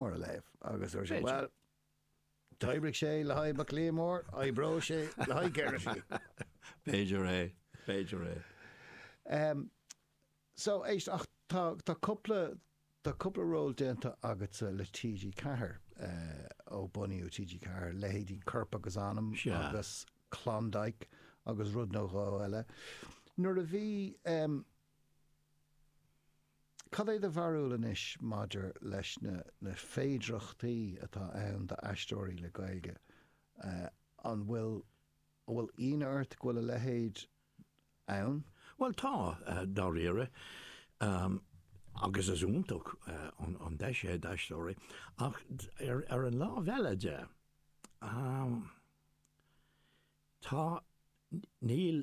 Mar a léamh. Agus dúirt sé, Bhuel, d'oibrigh sé le haghaidh Maclean Mhóir, oibreoidh sé le haghaidh Gerrity. B'fhéidir é, b'fhéidir é. Em, so, éist, ach tá, tá cúpla, tá cúpla ról déanta agatsa le TG4, eh, ó bunaíodh TG4, leithéidí Corp agus Anam agus Klondike agus rud nó dhó eile. Nuair a bhí, em, Cad é do bharúil anois maidir leis na na féidearthachtaí atá ann d'aisteoirí le Gaeilge? An bhfuil an bhfuil íonadh ort go bhfuil a leithéid ann? Bhuel tá, dáiríre, agus is iontach an deis é d'aisteoirí, ach ar an lámh eile de, tá, níl,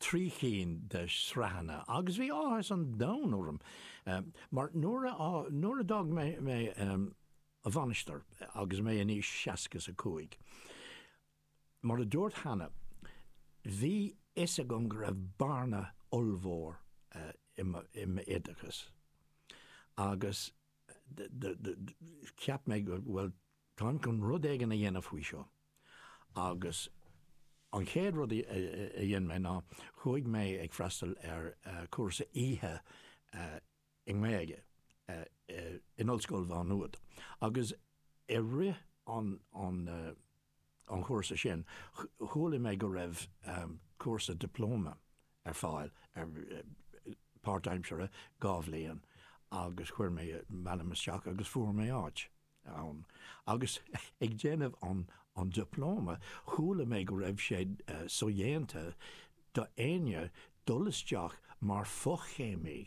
trí chinn de shraitheanna agus bhí áthas an domhain orm mar nuair a nuair a d'fhág mé mé an Mhainistir agus mé in aois seasca is a cúig mar a dúirt cheana bhí fhios agam go raibh bearna ollmhór i mo i m'oideachas agus do do do cheap mé go bhfuil táim chun rud éigin a dhéanamh faoi seo. Agus an chéad rud a dhein mé ná chuaigh mé ag freastal ar chúrsa oíche i nGaeilge in Ollscoil Mhá Nuad. Agus i rith an chúrsa sin chuala mé go raibh cúrsa dioplóma ar fáil ar páirtaimseartha dhá bhliain agus chuir mé m'ainm isteach agus fuair mé áit ann. Agus ag déanamh an dioplóma chuala mé go raibh sé sodhéanta d'éinne dul isteach mar fochéimí.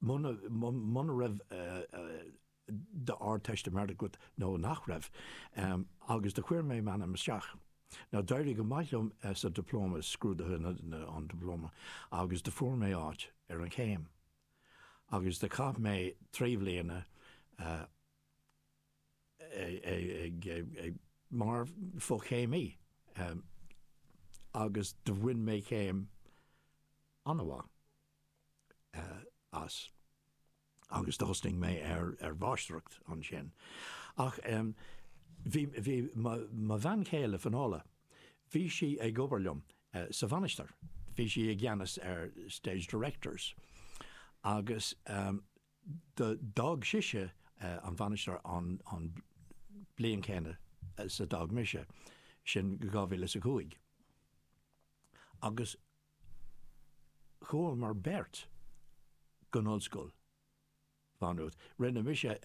muna raibh d'Ardteistiméireacht agat nó nach raibh, agus do chuir mé m'ainm isteach. Now d'éirigh go maith liom sa Dioplóma, i scrúduithe an Dioplóma, agus do fuair mé áit ar an chéim. Agus do chaith mé trí bhliana mar fho-chéimí agus do bhain mé céim an-mhaith. as. Agus thosnaigh mé ar mháistreacht ansin. Ach bhí mo bhean chéile, Finola, bhí sí ag obair liom sa Mhainistir, bhí sí i gceannas ar Stage Directors. Agus d'fhág sise an Mhainistir an bhliain chéanna is a d'fhág mise, sin 2005. Agus Chuamar beirt go hOllscoil Mhá Nuad. Rinne mise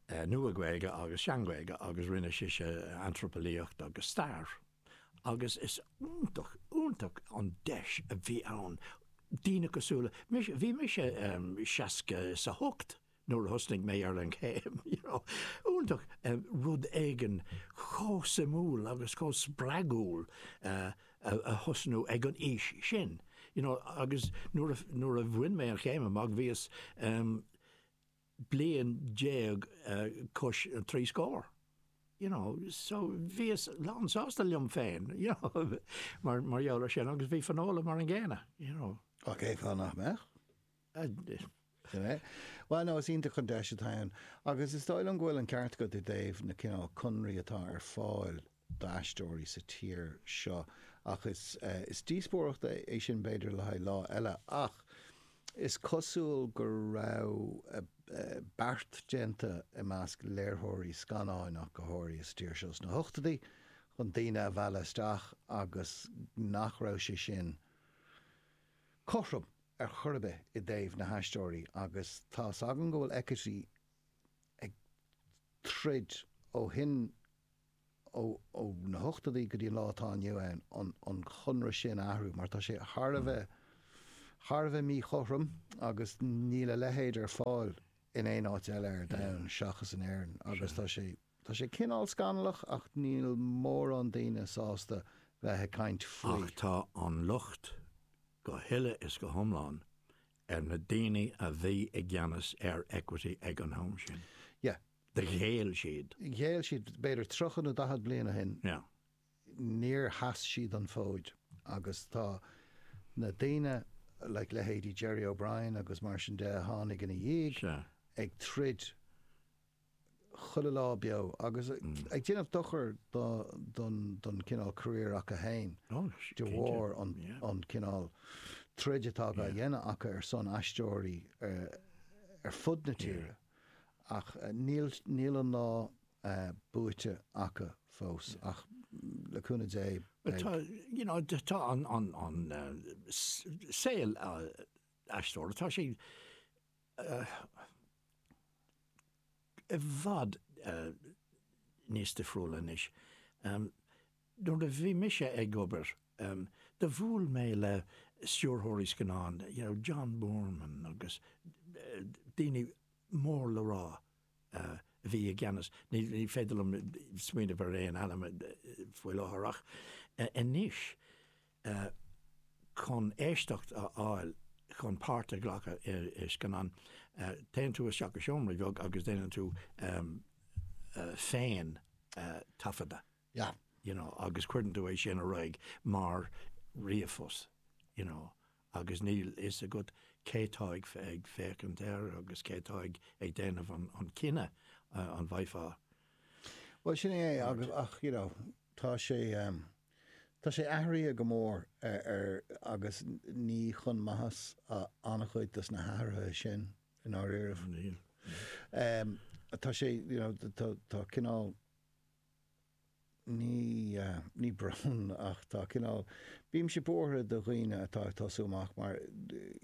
Nua-Ghaeilge agus Sean-Ghaeilge agus rinne sise Antraipeolaíocht agus Stair agus is iontach, iontach an deis a bhí ann daoine cosúil le mise, bhí mise seasca is a hocht, nuair a thosnaigh mé ar an chéim, you know, iontach rud éigin chomh suimiúil agus chomh spreagúil a thosnú ag an aois sin, you know, agus nuair a bhain mé an chéim amach bhíos bliain déag agus trí scór, you know, so bhíos lánsásta liom féin, you know, mar gheall ar sin agus bhí Finola mar an gcéanna, you know. Nach mbeadh? Bhuel, no, is iontach an deis atá ann. Agus is dóigh liom go bhfuil an ceart agat i dtaobh na cineál conraí atá ar fáil d'aisteoirí sa tír seo. Ach is, eh, is díospóireacht é, é sin b'fhéidir le haghaidh lá eile. Ach is cosúil go raibh, eh, eh, beart déanta i measc léirtheoirí scannáin ach go háirithe sa tír seo sna hochtadaí chun daoine a mhealladh isteach agus nach raibh sé sin cothrom. ar chor ar bith i dtaobh na haisteoirí agus tá's agam go bhfuil equity ag troid ó shin ó na hochtadaí go dtí an lá atá inniu ann chun an conradh sin a athrú mar tá sé thar a bheith thar a bheith míchothrom agus níl a leithéid ar fáil in aon áit eile ar domhan seachas in Éirinn agus tá sé Tá sé cineál scannalach ach níl mórán daoine sásta bheith ag caint faoi. Ach tá an locht go huile is go hiomlán ar na daoine a bhí i gceannas ar Equity ag an am sin. Yeah. Ghéill siad. Ghéill siad b'fhéidir tríocha nó daichead bliain ó shin. Yeah. Níor sheas siad an fód agus tá na daoine, like leithéidí Gerry O'Brien agus mar sin de a tháinig ina dhiaidh, ag troid chuile lá beo agus ag déanamh dochar don chineál career acu fhéin de bharr an cineál troid atá á dhéanamh acu ar son aisteoirí ar fud na tíre ach níl an lá buaite acu fós ach le cúnamh Dé beidh. Tá you know tá an saol aisteora tá sé i bhfad níos difriúla anois. Nuair a bhí mise ag obair, do bhuail mé le stiúrthóirí scannán, you know, John Boorman agus daoine mór le rá a bhí i gceannas, ní féidir liom smaoineamh ar aon ainm faoi láthair ach anois, e chun éisteacht a fháil chun páirt a ghlacadh i scannán. Téann tú isteach i seomra beag agus déanann tú féin taifeadadh you know agus cuireann tú é sin ar aghaidh mar ríomhphost you know agus níl a fhios agat cé tá ag féachaint air agus cé tá ag déanamh an cinneadh an bhfaighfeá Bhuel sin é ach you know tá sé. Tá sé athraithe go mór ar agus ní chun maitheas an-chuid de na hathruithe sin i ndáiríribh. Níl. Tá sé, you know, tá, tá cineál, ní, ní brón ach tá cineál, bímse buartha do dhaoine atá ag tosú amach mar,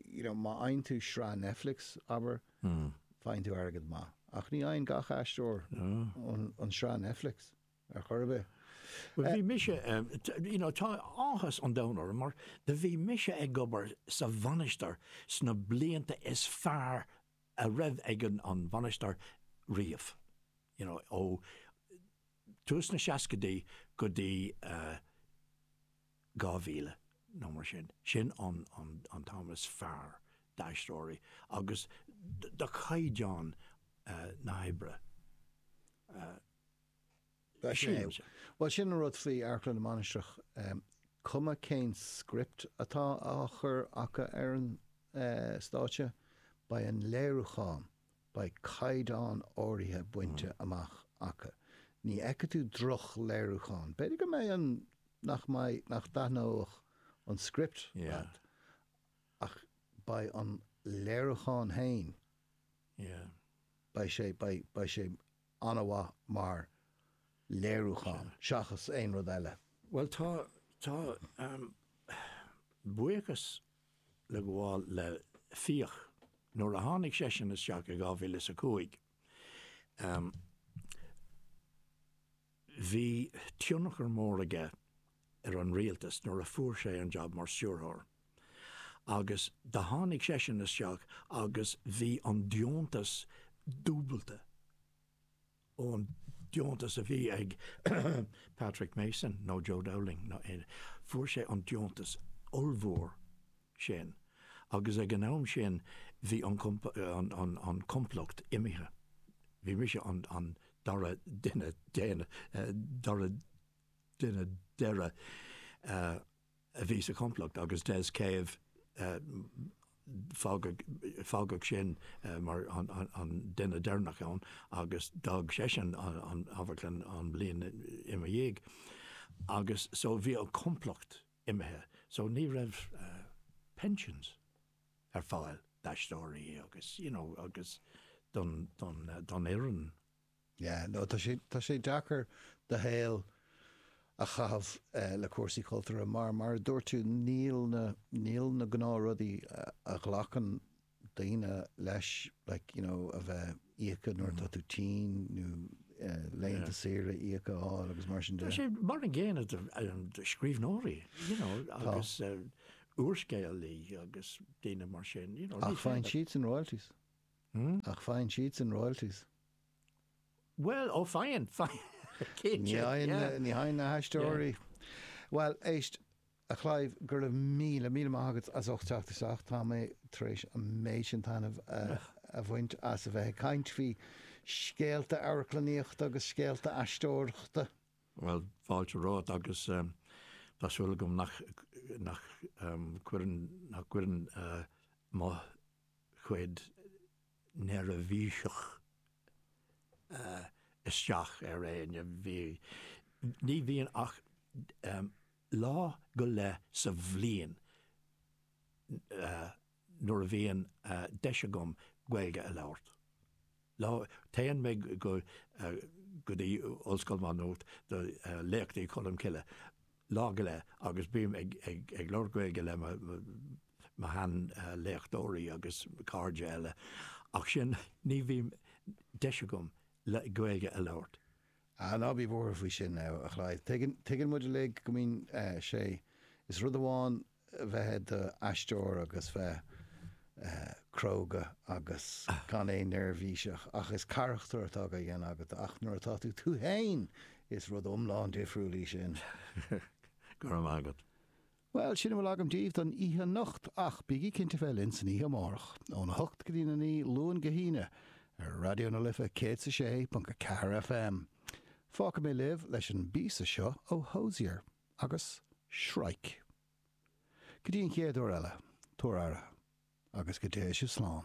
you know, má fhaigheann tú sraith Netflix, abair, faigheann tú airgead maith. Ach ní fhaigheann gach aisteoir an tsraith Netflix. ar chor ar bith. Bhuel, bhí mise, you know, tá áthas an domhain orm mar do bhí mise ag obair sa Mhainistir sna blianta is fearr a raibh ag an Mhainistir riamh, you know, ó tús na seascaidí go dtí dhá mhíle nó mar sin. Sin an t-am is fearr d'aisteoirí agus do chaighdeán na hoibre. Bhuel, sin é. Bhuel, sin an rud faoi Amharclann na Mainistreach, cuma cén script atá á chur acu ar an stáitse, beidh an léiriúchán, beidh caighdeán áirithe bainte amach acu. Ní fheicfidh tú drochléiriúchán. B'fhéidir go mbeidh an, nach mbeidh, nach dtaitneoidh an script leat, ach beidh an léiriúchán fhéin, beidh sé, beidh, beidh sé an-mhaith mar léiriúchán seachas aon rud eile. Bhuel, tá, tá, ahem, buíochas le gabháil le Fiach, nuair a tháinig seisean isteach i dhá mhíle is a cúig, ahem, bhí tionchar mór aige, ar an rialtas nuair a fuair sé an jab mar stiúrthóir agus do tháinig seisean isteach agus bhí an deontas dúbailte ón deontas a bhí ag Patrick Mason nó Joe Dowling nó aon, fuair sé an deontas ollmhór sin agus ag an am sin bhí an an complacht imithe, bhí mise an an dara duine déanach, dara. duine deireadh a bhí sa chomplacht agus Des Cave fágadh sin mar an duine deireanach ann agus d'fhág seisean an amharclann an bhliain ina dhiaidh agus so bhí an complacht imithe so ní raibh pensions ar fáil d'aisteoirí agus you know agus don fhoireann. Yeah, no, tá sé, tá sé deacair do shaol a chaitheamh le cúrsaí cultúrtha mar, mar a dúirt tú, níl na, níl na gnáthrudaí a ghlacann daoine leis, like, you know, a bheith íoctha nuair atá tú tinn nó laethanta saoire íoctha a fháil agus mar sin de. Tá sé mar an gcéanna do scríbhneoirí, you know, agus úrscéalaí agus daoine mar sin, you know. Ach faigheann siadsan royalties. Hmm? Ach faigheann siadsan royalties. Bhuel, ó faigheann, faigheann, cinnte, yeah. Ní fhaigheann na haisteoirí. Bhuel, éist, a Chlive, go raibh míle, míle maith agat as ucht teacht isteach, tá mé tar éis an méid sin taitneamh a bhaint as a bheith ag caint faoi scéalta amharclannaíochta agus scéalta aisteoireachta. Bhuel, fáilte romhat agus tá súil agam nach, nach, nach cuireann mo. chuid neirbhíseach isteach ar éinne. Bhí, ní bhíonn ach lá go leith sa bhliain nuair a bhíonn deis agam Gaeilge a labhairt. Lá, téann mé go, go dtí Ollscoil Mhá Nuat do Léachtaí Cholm Cille lá go leith agus bím ag, ag, ag labhairt Gaeilge le mo, mo shean léachtóirí agus cairde eile ach sin, ní bhím, deis agam le, Gaeilge a labhairt. Ah, ná bí buartha faoi sin, a Chlive. Tuigeann, tuigeann muid uilig go mbíonn sé, is rud amháin bheith i d'aisteoir agus bheith cróga agus gan aon neirbhíseach ach is carachtar atá á dhéanamh agat ach nuair atá tú tú féin is rud iomlán difriúil í sin. Go raibh maith agat. Bhuel, sin a bhfuil agam daoibh don oíche anocht ach bígí cinnte bheith linn san oíche amárach, óna hocht go dtí'n a naoi, Luan go hAoine, ar Raidió na Life 106.4 FM. Fágfaidh mé libh leis an bpíosa seo ó Hozier. Agus Shrike. Go dtí an chéad uair eile, tabhair aire, agus go dté sibh slán.